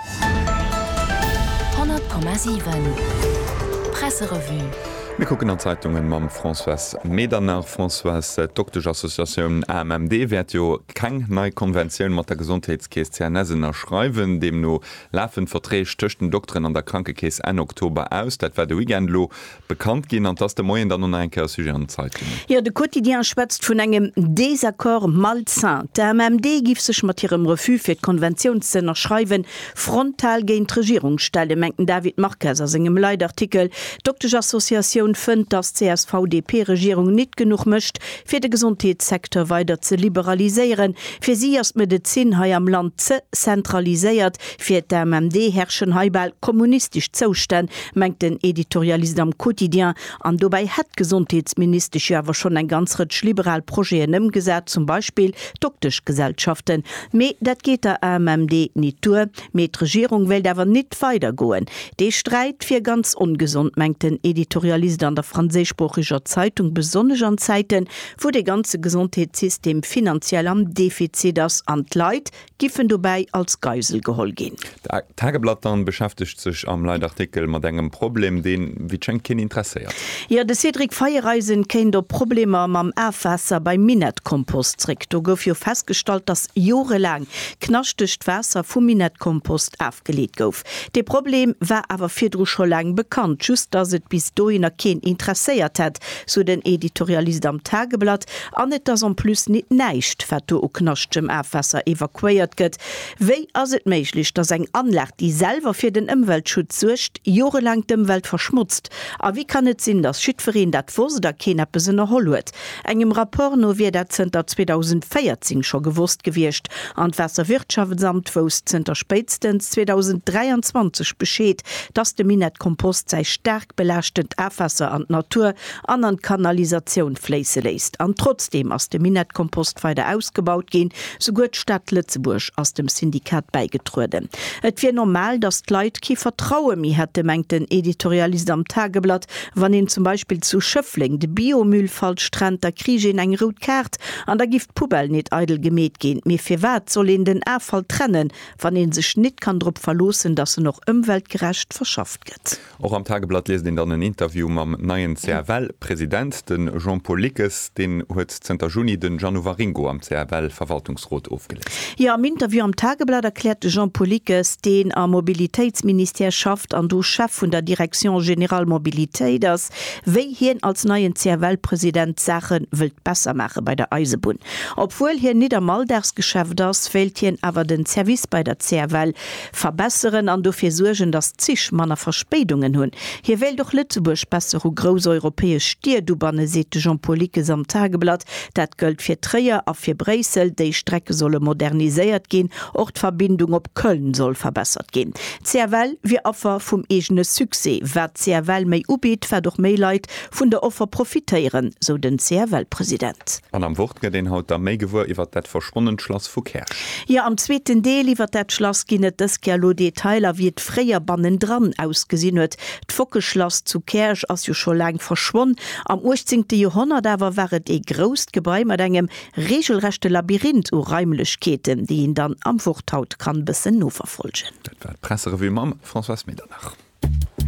100,7 Presserevue Mir kucken an d'Zeitungen mam Françoise Medernach. Françoise, d'Dokteschassociatioun AMMD wäert jo keng nei Konventioun mat der Gesondheetskeess CNS ënnerschreiwen. Deemno lafen d'Verträg tëscht den Dokteren an der Krankekeess Enn Oktober aus. Dat war de Weekend elo bekannt ginn an dass de Moien dann och nach eng Kéier e Sujet an den Zeitungen. Jo, de Quotidien schwätzt vun engem Désaccord malsain. D'AMMD giff sech mat hirem Refus fir d'Konventioun ze ënnerschreiwen, frontal géint d'Regierung stellen, mengt den David Marques a sengem Leitartikel. D'Dokteschassociatioun fënnt, dass d'CSV-DP-Regierung nit genuch mécht, fir de Gesondheetssecteur weider ze liberaliséieren. Fir si ass d'Medezin hei am Land ze zentraliséiert. Fir d'AMMD herrschen hei bal kommunistesch Zoustänn, mengt den Editorialist am Quotidien. An dobäi hätt d'Gesondheetsministesch jo awer schonn eng ganz Rëtsch liberal Projeten ëmgesat, zum Beispill d'Dokteschgesellschaften. Mee dat geet der AMMD nit duer. Mee d'Regierung wéilt awer nit weider goen. Dee Sträit wier ganz ongesond, mengt den Editorialist an der franséischsproocheger Zeitung, besonnesch an Zäiten, wou de ganze Gesondheetssystem finanziell am Defizit ass an d'Leit Giff en dobäi als Geisel geholl ginn? D'Tageblatt dann beschäftegt sech am Leitartikel mat engem Problem, deen, wéi et schéngt, keen interesséiert. Jo, de Cédric Feiereisen kéint op Problemer mam Afwaasser beim Minett-Kompost zréck. Do gouf jo festgestallt, datt jorelaang knaschtegt Waasser vum Minett-Kompost afgeleet gouf. Dee Problem war awer virdru scho laang bekannt, just datt et bis dohinner keen interesséiert hätt, sou den Editorialist am Tageblatt. An et ass en plus nit näischt, wat do u knaschtgem Afwaasser evakuéiert gëtt. Wéi ass et méiglech, datt eng Anlag, déi selwer fir den Ëmweltschutz suergt, jorelaang d'Ëmwelt verschmotzt? A wéi kann et sinn, datt jiddwereen dat wosst a keen eppes ënnerholl huet? Engem Rapport no wier dat zënter 2014 scho gewosst gewiescht an d'Waasserwirtschaftsamt wousst zënter spéitstens 2023 Bescheed, dass de Minett Kompost säi staark belaaschtend Afwaasser an d'Natur an an d'Kanalisatioun fléisse léisst. An trotzdeem ass de Minett Kompost weider ausgebaut ginn. Souguer d'Stad Lëtzebuerg ass dem Syndikat bäigetrueden. Et wier normal, dass d'Leit kee Vertraue méi hätte, mengt den Editorialist am Tageblatt. Wann een zum Beispill zu Schëffleng de Biomüll falsch trennt, da kriich een eng rout Kaart an da giff d'Poubelle nit eidel gemeet ginn. Mee firwat soll een den Affall trennen, wann een sech nit kann drop verloossen, dass en och ëmweltgerecht verschafft gëtt? Och am Tageblatt liest een dann en Interview mam neien CFL-President, de Jean-Paul Lickes. Deen huet zënter Juni den Jeannot Waringo am CFL-Verwaltungsrot ofgeléist. Jo, am Interview am Tageblatt erkläert de Jean Poullickes, deen am Mobilitéitsministère schafft an do Chef vun der Direction générale Mobilitéit ass, wéi hien als neien CFL-President d'Saache wëllt besser maache bei der Eisebunn. Obwuel hien nit am Alldagsgeschäft ass, wéilt hien awer den Service bei der CFL Verbesseren an dofir suergen, datt d'Zich manner Verspéidungen hunn. Hie wéilt och Lëtzebuerg besser u grouss europäesch Stied ubannen, seet de Jean-Paul Lickes am Tageblatt. Dat gëllt fir Tréier a fir Bréissel. Déi Strecke solle moderniséiert ginn. Och d'Verbindung op Köln soll verbessert ginn. D'CFL wier Affer vum eegene Succès. Wat d'CFL méi ubitt, wat och méi Leit vun der Offer profitéieren, sou den CFL-President. An am Wort gëtt een haut da méi gewuer iwwert dat verschwonnent Schlass vu Käerch. Jo, am zweeten Deel iwwert dat Schlass ginn et dës Kéier elo Detailer, wéi et fréier bannendran ausgesinn huet. D'Fockeschlass zu Käerch ass jo scho laang verschwonn. Am uechtzéngte Joerhonnert awer war et ee grousst Gebai mat engem reegelrechte Labyrinth u Raimlechkeeten, déi een dann am Wort haut kann bëssen noverfolgen. Dat war d'Presserevue mam Françoise Medernach.